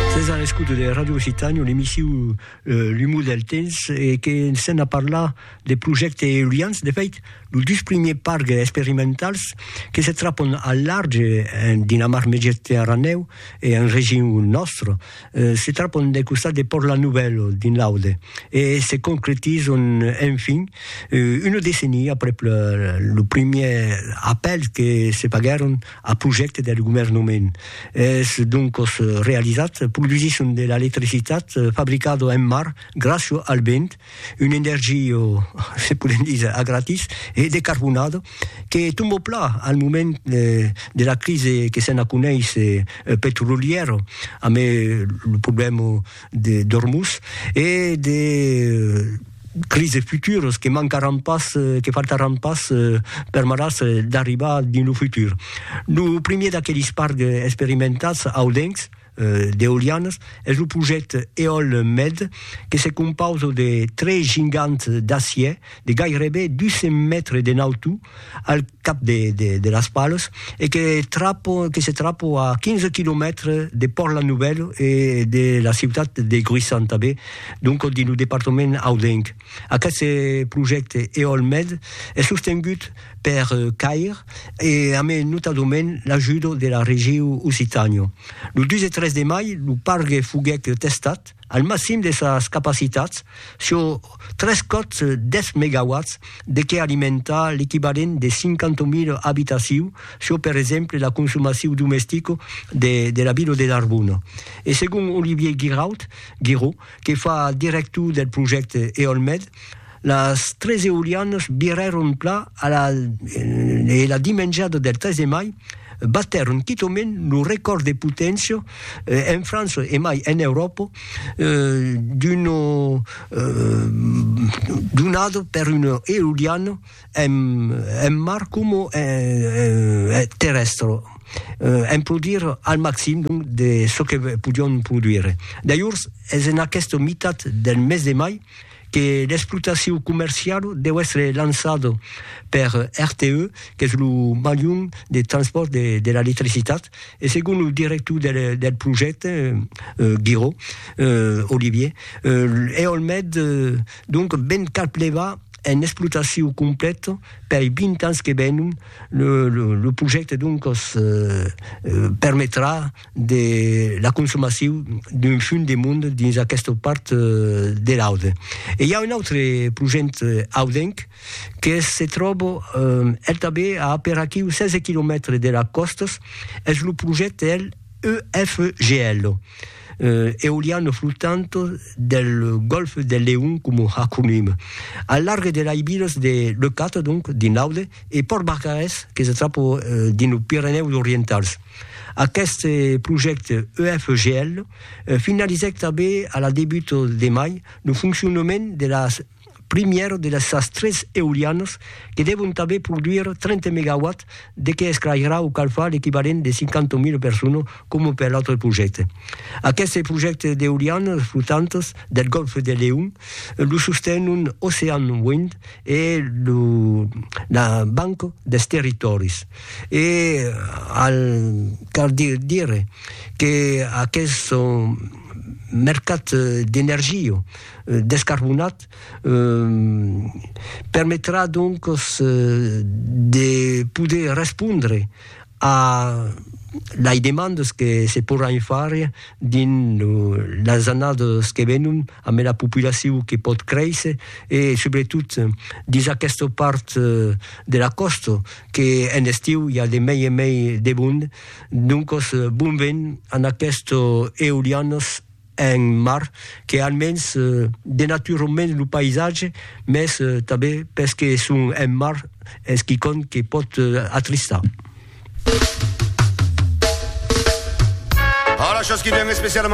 Sètz a l'escouta de Radio Occitània, l'emissiu L'umor del temps, e que sèm a parlar de projèctes eolians. De fèit, los dus primièrs parcs experimentals que se trapon al large en Dinamar Mediterranèu e en region nòstra, se trapon del costat de Pòrt La Nouvèla, dins l'Aude, e se concretizan enfin una decennia aprèp lo primièr apèl que se faguèron Ath projècte deth governhement es doncos realizat produsisson de l'electricitat fabricado en mar gràcio al vent, un energio, se podem díser, a gratis e decarbonado que tombo pla al moment de la crise que se'n aconeis petrolièro amé lo problèmo d'Ormuz e de crises futuras que mancaràn pas, que faltaràn pas permetàs d'arribar dins lo futur. Lo primièr d'aqueles parcs experimentats audencs d'eolianas es lo projècte Eolmed que se compausa de tres gigants d'acièr de gairebe 200 mètres de nautor, al cap de de las palos e que trapo que se trapo a 15 quilomètres de Pòrt la Nouvelle e de la ciutat de Gruissan tanben donc dins lo departament audenc. Aqueste projècte Eolmed es sostengut per CAIR e amé notadament l'ajuda de la Regiu Occitània. Lo 2 e 3 de mai lo pargue foguèt testat al maxim de sas capacitats sur tres còps 10 megawatts de qué alimentar l'equivalent de 50.000 abitaciu çò per exemple la consomaciu domestica de de la vila de Narbona. E segon Olivier Guiraud, Guiraud, que fa director del projècte Eolmed, las tres eolianas virèron pla a la e la dimenjada del 3 de mai Batèron quitaument lo recòrd de poténcia en França e mai en Euròpa d'una donada per una eoliana en mar coma terrèstra, en produir al maximum de çò que podián produire. Dajors, es en aquesta mitat del mes de mai que l'explotacion comercial deu èstre lançada per RTE, qu'es lo malhon de transpòrt de l'electricitat, e segon lo director del projècte, Guiraud, Olivier, Eolmed donc ven cap levar en explotacion completa pei 20 ans que venon, lo projècte doncas permetrà, de la consomacion d'un fum de mond dins aquesta part de l'Aude. E i a un autre projent audenc que se tròba el tanben a aperaquiu 16 quilomètres de las còstas, es lo projent del EFGL, Eoliano Flotante del Golfe del Leon coma acronim, al larg de las vilas de Leucate, donc dins l'Aude, e Pòrt Barcarès que se tròba dins los Pirenèus Orientals. Aqueste projècte EFGL finalizèc tanben a la debut de mai lo foncionament de la primièra de sas tres eolianas que devon tanben produire 30 megawatts de que esclairà o calfar l'equivalent de 50.000 personas coma per l'autre projècte. Aqueste projècte d'eolianas flotantas del Gòlf de Leon lo sostenon Ocean Wind e la Banca dels Territòris. E al cal dire que aqueth mercat d'energia descarbonat permetrà donques de poder respondre a lei demandes que se poràn far dins las annadas que venon. ambe la populaciu que pòt créisser e subretot dins aquesta part de la còsta que en estiu i a de mei en mei de bond. Doncos bon vent an aquesto eolianos en mar que almens denaturon mens lo païsatge mes tanben pes que son en mar es quicòm que pòt atristar.